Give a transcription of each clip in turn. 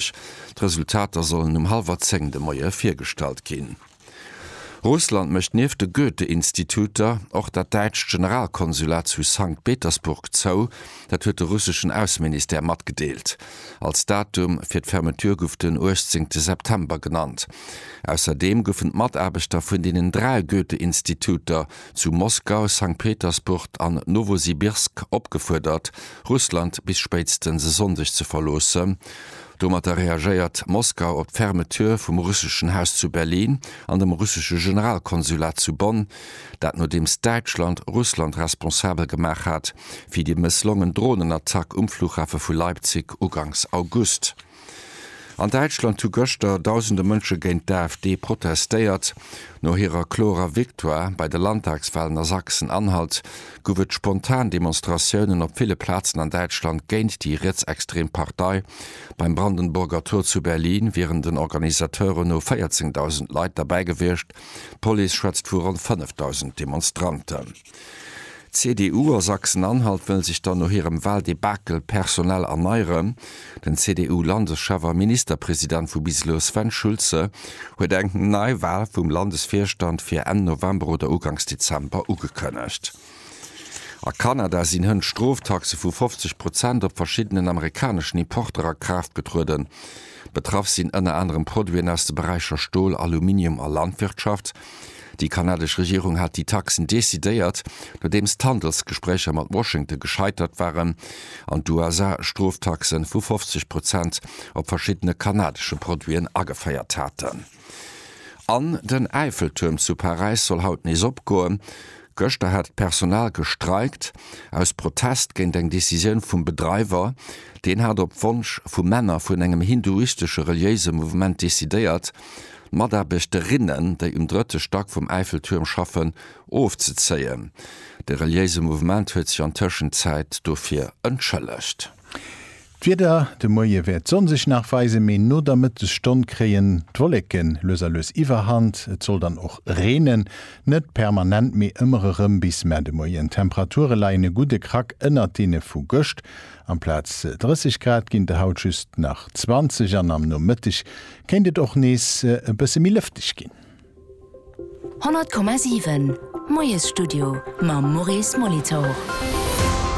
Lëtzebuerg. D'Resultater sollen um hallwer zéng de Moie virgestallt ginn. Russland mécht nieft de Goethe-Instituter och dat däitscht Generalkonsulat zu Sankt Petersburg zou. Dat huet de russeschen Ausseministère matgedeelt. Als Datum fir d'Fermeture gouf den uechtzéngte September genannt. Ausserdeem goufen d'Mataarbechter vun deenen dräi Goethe-Instituter zu Moskau, Sankt Petersburg an Nowosibirsk opgefuerdert, Russland bis spéitstens e Sonndeg ze verloossen. Domatter reagéiert Moskau op d'Fermeture vum russeschen Haus zu Berlin an dem russesche Generalkonsulat zu Bonn, dat nodeems Däitschland Russland responsabel gemaach hat fir déi mësslongen Dronenattack um Flughafe vu Leipzig uganks August. An Däitschland hu gëschter Dausende Mënsche géint d'AfD protestéiert. No hirer klorer Victoire bei de Landtagswalen a Sachsen-Anhalt guff et spontan Demonstratiounen op ville Plazen an Däitschland géint déi rietsextrem Partei. Beim Brandenburger Tor zu Berlin wieren den Organisateuren no 14.000 Leit derbäi gewiescht, d'Police schwätzt vu ronn 5.000 Demonstranten. D'CDU a Sachsen-Anhalt wëll sech dann no hirem Wahldebakel personell erneieren. Den CDU-Landeschef a Ministerpresident vu bis elo Sven Schulze huet eng Neiwal vum Landesvirstand fir Enn November oder Uganks Dezember ugekënnegt. A Kanada sinn hënt Stroftaxe vu 50 Prozent op verschiddenen amerikaneschen Importer a Kraaft getrueden. Betraff sinn ënner anerem Produiten aus de Beräicher Stol, Aluminium a Landwirtschaft. Déi kanadesch Regierung hat déi Taxen decidéiert, nodeems d'Handelsgespréicher mat Washington gescheitert waren an d'USA Stroftaxe vu 50 Prozent op verschiddene kanadesche Produiten ageféiert haten. An den Äifeltuerm zu Paräis soll haut nees opgoen. Gëschter hat d'Personal gestreikt, aus Protest géint eng Decisioun vum Bedreiwer. Deen hat op Wonsch vu Männer vun engem hinduistesche reliéise Mouvement decidéiert, d'Mataarbechterinnen, déi um drëtte Stack vum Äiffeltuerm schaffen, ofzezéien. De reliéise Mouvement huet sech an Tëschenzäit dofir entschëllegt. D'Wieder, De Moie wäert d'Sonn sech nach weisen, mee no der Mëttesstonn kréien d'Wolleke lues a lues Iwwerhand. Et soll dann och reenen, net permanent, mee ëmmer erëm bis Mä de Moien. D'Temperature leien e gudde Krack ënnert deene vu gëscht, amplaz 30 Grad ginn et haut just nach 20 an am Nomëtteg kéint et och nees e bësse méi lëfteg ginn. 100,7 Moiesstudio mam Maurice Molitor.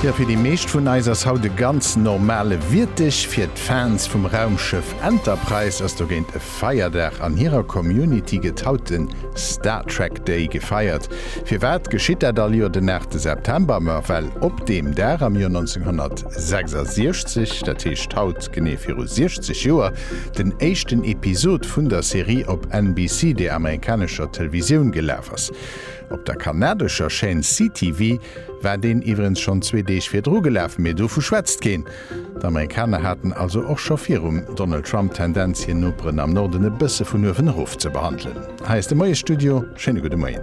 Jo, fir déi meescht vun eis ass haut e ganz normale Wiertdeg. Fir d'Fans vum Raumschëff Enterprise ass dogéint e Feierdag. An hirer Community gëtt haut de Star Trek Day gefeiert. Firwat geschitt dat all Joer den 8 September? Ma well op deem Dag am Joer 1966, dat heescht haut Genee viru 60 Joer, den éischten Episod vun der Serie op NBC, der amerikanescher Televisioun, gelaf ass. Op der kanadescher Chaîne CTV war deen iwwerens schonn zwee Deeg virdru gelaf, mee dovu schwätzt keen. D'Amerikaner haten also och scho virum Donald Trump d'Tendenz, hir Noperen am Norden e bësse vun uewen erof ze behandelen. Hei ass de Moiesstudio, schéine gudde Moien.